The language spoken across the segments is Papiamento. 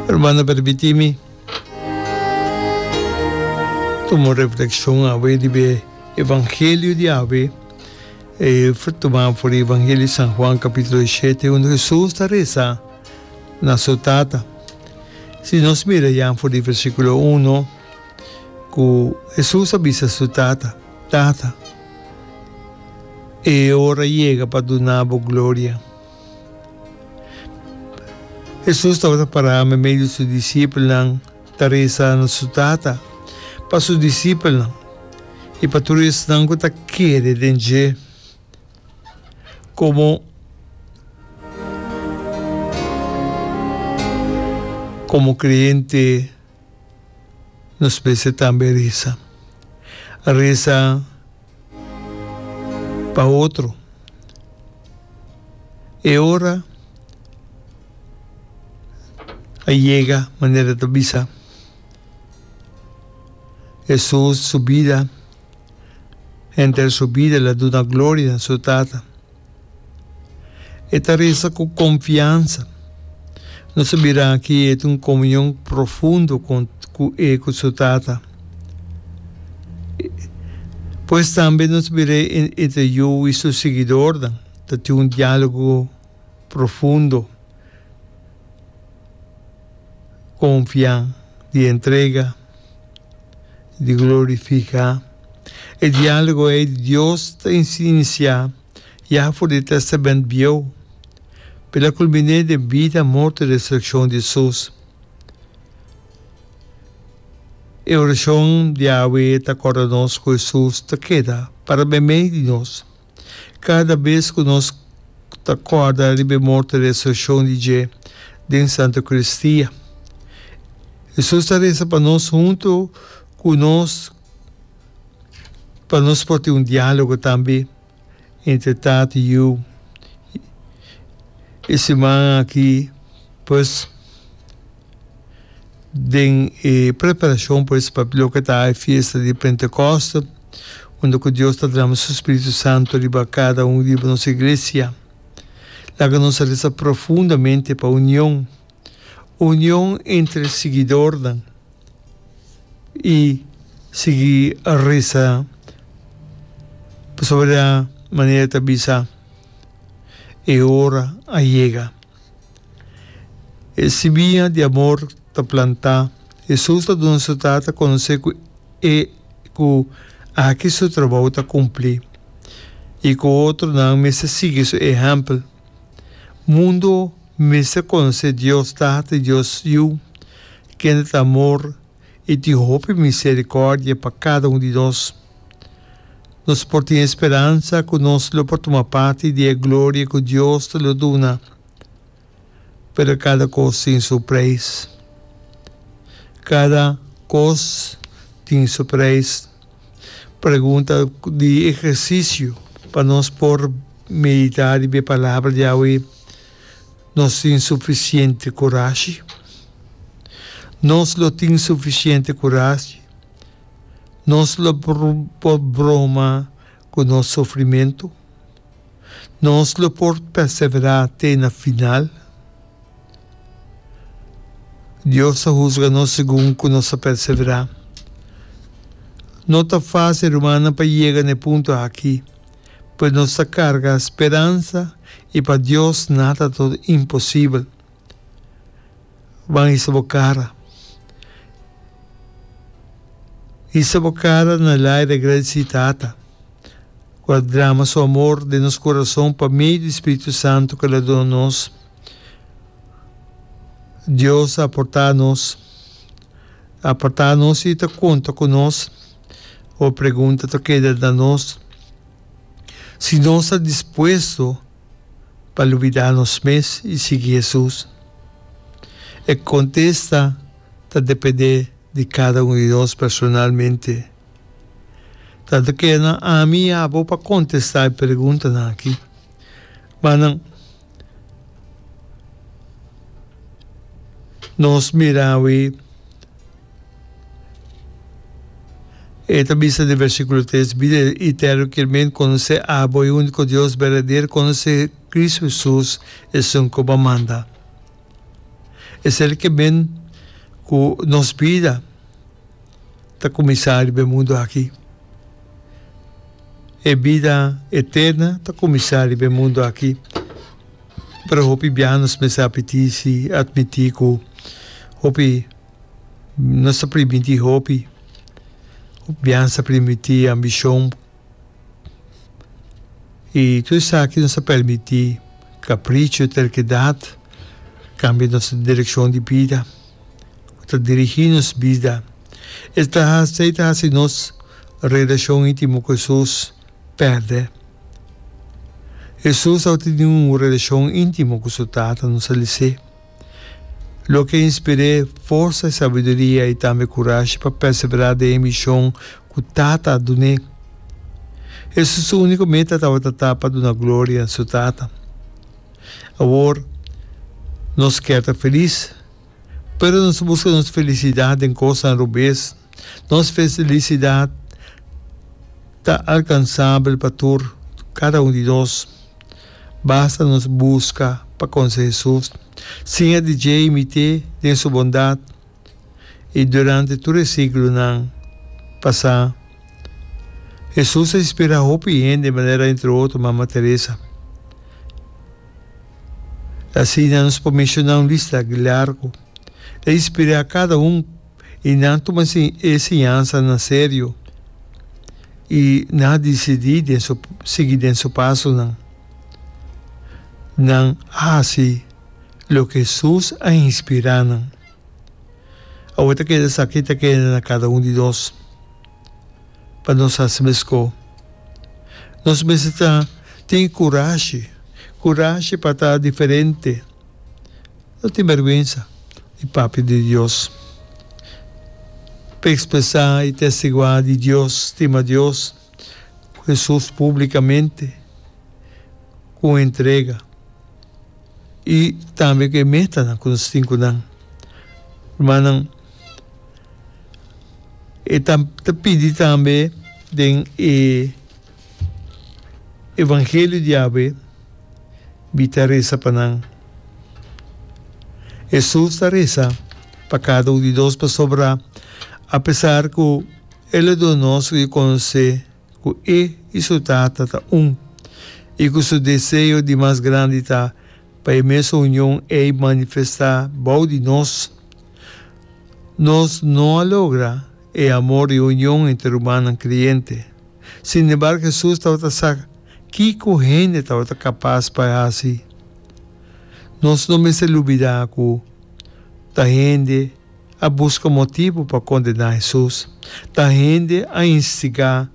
Hermano a permití mi tuma un reflekshon awe riba e evangelio di awe, e tumá for e evangelio di San Juan kapítulo e shete, unda Hesus ta resa na su Tata. Si nos mira ya for di versíkulo uno ku Hesus a bisa su Tata, Tata, e ora yega pa duna bo gloria. Hesus tabata pará medio di su disipelnan ta resa na su Tata. Pa su disipelnan i pa tur esnan ku ta kere den dje, komo komo kreyente, Nos mester tambe resa. Resa pa otro. E ora a yega manera ta bisa Jesus su bida. henter su bida la duna gloria na su Tata. E ta resa ku konfiansa. Nos a bira aki e tin un komunion profundo kon ku e ku su Tata. Pues tambe nos a bira e entre yu i su siguidornan ta tin un diálogo profundo, konfiá, di entrega. di glorifiká. E diálogo ei di Dios ta insinisá ya for di e Tèstamènt Bieu, pero el a kulminé den bida, morto i resurekshon di Hesus. E orashon di awe ta kòrda nos ku Hesus ta keda para mei mei di nos. Kada bes ku nos ta kòrda riba e morto i resurekshon di dje den Santa Eukaristiya, Hesus ta resa pa nos huntu ku nos pa nos por tin un diálogo tambe entre Tati, Yu. E siman aki pues. den e preparashon por esei papia loke ta e fiesta di Pentekoste, unda ku Dios ta drama Su Spiritu Santu riba kada un riba nos iglesia. Laga nos a resa profundamente pa union, union entre siguidornan, i sigui resa pasobra manera ta bisa e ora a yega. E simiña di amor ta plantá. Hesus ta duna su Tata konosé ku e ku aki su trabou ta kumplí i ku otronan mester sigui su ehèmpel. Mundu mester konosé Dios Tata i Dios Yu, kende ta amor i tin hopi miserikòrdia pa kada un di nos. Nos por tin e speransa ku nos lo por tuma parti di e gloria ku Dios ta lo duna. Pero kada kos tin su preis. Kada kos tin su preis. Pregunta di ehersisio pa nos por meditá riba e palabra di awe, Nos tin sufisiente kurashi? Nos lo tin sufisiente kurashi? Nos lo por broma ku nos sufrimentu? Nos lo por perseverá te na final? Dios ta husga nos segun ku nos a perseverá. No ta fásil rumannan pa yega na e punto aki, pero nos ta karga speransa i pa Dios nada ta imposibel. Ban hisa bo kara. Hisa bo kara na el aire agradeci Tata cu a drama su amor den nos corazon pa medio di Spiritu Santo cu el a duna nos. Dios a aporta nos, a aparta nos y ta conta cu nos. Bo pregunta ta keda na nos si nos ta dispuesto pa lubidá nos mes i sigui Hesus? E kontesta ta dependé di kada un di nos personalmente. Tantu ke nan ami i abo pa kontestá e preguntanan akí. Ma nan nos mira awe. E ta bisa den versíkulo tres, Bida eterno kier men konosé abo, e úniko Dios berdadero, konosé Kristu Hesus, esun ku bo a manda. Esei ta kier men ku nos bida ta kuminsá riba e mundu aki. E bida eterno ta kuminsá riba e mundu aki. Pero hopi biaha nos mester a pitisi, a atmití ku hopi. Nos ta primintí hopi. Bians ta primintí ambishon. I tur esaki nos ta permití kaprichu, terkedat, kambia nos direkshon di bida. Ku ta dirigí nos bida. E ta hasi, e ta hasi nos relashon íntimo ku Hesus pèrdè. Hesus tabata tene un relashon íntimo ku su Tata, nos a lisé. Loke inspir'é forsa i sabiduria i tambe kurashi pa perseverá den e mishon ku Tata a dun'é. Hesus su úniko meta tabata ta pa duna gloria su Tata. Awor nos kèr ta felis, pero nos ta buska nos felisidat den kosnan robes. Nos felisidat ta alkansabel pa tur, kada un di nos. Basta nos buska pa conse Hesus. Singa di dje i mite den su bondad i durante tur e siglonan pasá, Hesus a inspirá hopi hende manera entre otro Mama Teresa. Asina nos por mencioná un lista largo. El a inspirá cada un. I nan tuma si enseñansa na serio i nan a disidí den su sigui den su pasonan. Nan a hasi loke Hesus a inspirá nan. Awor ta keda esaki ta keda na kada un di nos pa nos hasi meskó. Nos mester ta tin kurashi, kurashi pa ta diferente. lo tin berguensa di papia di Dios. Pa expresa e testigua di Dios, stima Dios cu Jesus publicamente cu un entrega y tambe cu e metanan cu nos tin cu nan. Rumannan, e ta pidi tambe den e. Evangelio di Yahwe bi ta resa pa nan. Hesus ta resa pa kada un di nos pasobra apesar ku el a duna nos ku e konosé ku e i su Tata ta un i ku su deseo di mas grandi ta pa e mes union ei manifestá bou di nos, nos no a logra. E amor di union entre rumannan kriente. Sinembargo, Hesus tabata sa kiko hende tabata kapas pa e hasi. Nos no mester lubidá ku ta hende a buska motibu pa kondená Hesus. Ta hende a instigá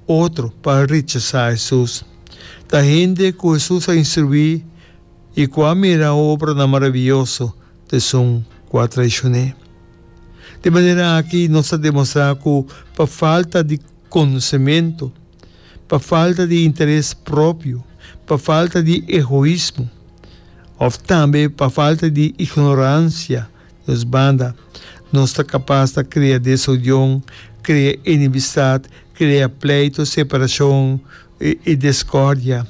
otro pa rechasá Hesus. Ta hende ku Hesus a instruí i ku a mira e obranan maraviyoso, t'esun ku a traishoné. De manera aki nos ta demostrá ku pa falta di konosementu, pa falta di interes propio, pa falta di egoismo òf tambe pa falta di ignoransia nos banda, nos ta kapas ta krea desunion, krea enemistat, krea pleito, separashon i deskòrdia.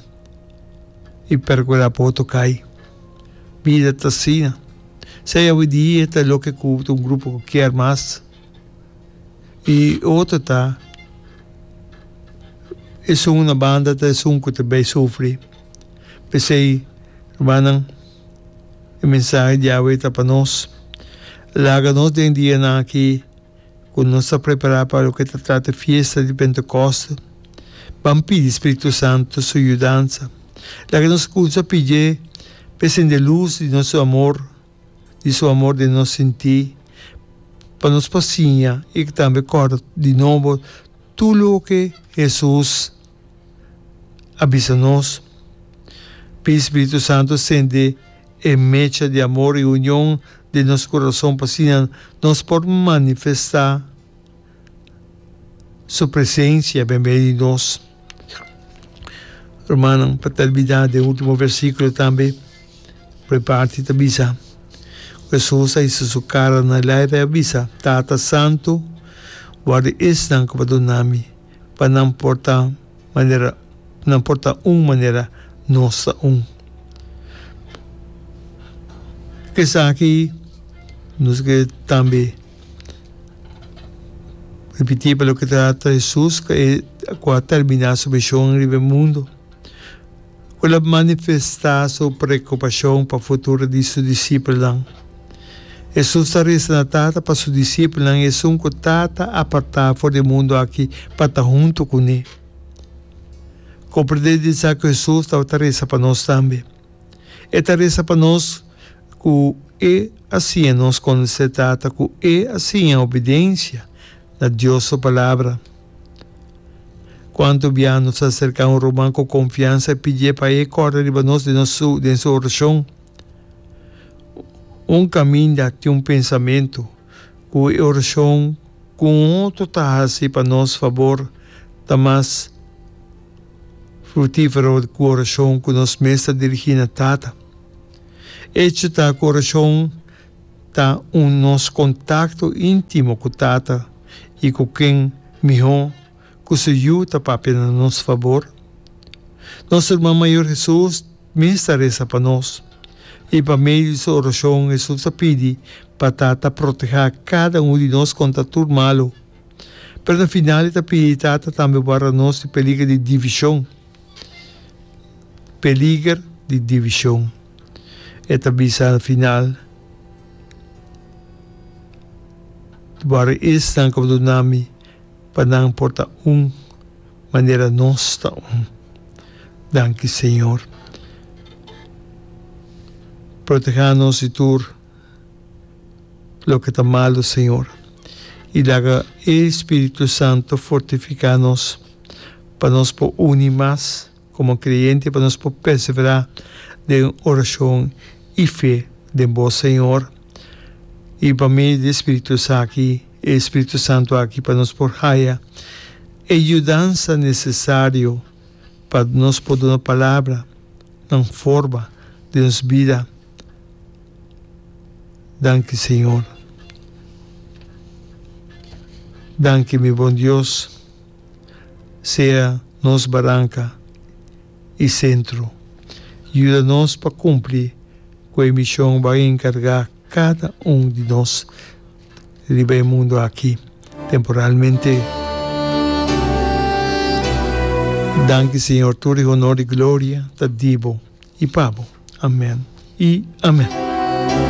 i percura bo to cay. Bida ta asina. Sa yawe di e ta loke cu un grupo cu kier mas i otro ta esun na banda ta esun cu ta bay sufri. P'esey, rumannan, e mensahe di yawe ta pa nos, laga nos den dianan aki Ku nos ta prepará pa loke ta trata fiesta di Pentekoste, ban pidi spiritu santu su yudansa. Laga nos kumsa pidié pa e sende lus di nos amor, di su amor den nos sinti, pa nos por siña i tambe kòrda di nobo tur loke Hesus a bisa nos. Pidi spiritu santu sende. E mecha di amor i union den nos kurason pa asina nos por manifestá Su presensia ben beni di nos. Rumannan, pa tèrmina den e último versíkulo tambe, por e parti ta bisa, ku Hesus a hisa Su kara na lèf, e a bisa, Tata Santu, guarda esnan ku bo dunami, pa nan por ta manera nan por ta un manera nos ta un. Esaki nos ke tambe repití pa loke ta Jesus ku a terminá su mishon riba e mundu. Cu lo manifesta su preocupacion pa futuro di su discipelnan. Jesús ta reza na Tata pa su discipelnan esun cu Tata a parta for di e mundo aki pa ta hunto cu ne. Comprende di esaki cu Jesús tabata reza pa nos tambe. E ta reza pa nos cu e a siña nos conoce Tata, cu e a siña obidencia na Dios su Palabra. Cuanto bia nos a cerca un ruman cu confiansa, pidié pa e corda riba nos den nos su den su oracion. Un caminda tin un pensamento cu e oracion cu un otro ta haci pa nos fabor ta mas fructifero cu oracion cu nos mes ta dirigi na Tata. Echo ta cu oracion. ta un nos kontakto íntimo ku Tata i ku ken mihó ku su Yu ta papia na nos fabor. Nos Ruman Mayor Hesus mes ta resa pa nos, i pa medio di su orashon Hesus ta pidi pa Tata protehá kada unu di nos kontra tur malu. Pero na final e ta pidi Tata tambe guarda nos di peliger di divishon. peliger di divishon. E ta bisa al final, Boriisnan ku duna mi pa nan por ta un manera nos ta un. Danki Señor. Proteha nos di tur loke ta malu, Señor, i laga e spiritu santu fortifiká nos. pa nos por uni mas como creyente, pa nos por persevera den oracion y fe den bo, Señor. Y pa medio di e spiritus aki, e Espíritu Santo aki, pa nos por haya e yudansa necesario pa nos por duna palabra nan forma den nos bida. Danki, Señor. Danki, mi bon Dios. sea nos baranka i sentro. Yuda nos pa kumpli ku e mishon bo a enkargá kada un di nos riba e mundu aki temporalmente. Danki Señor, tur e honor i gloria ta di bo i pa bo. Amèn i amèn.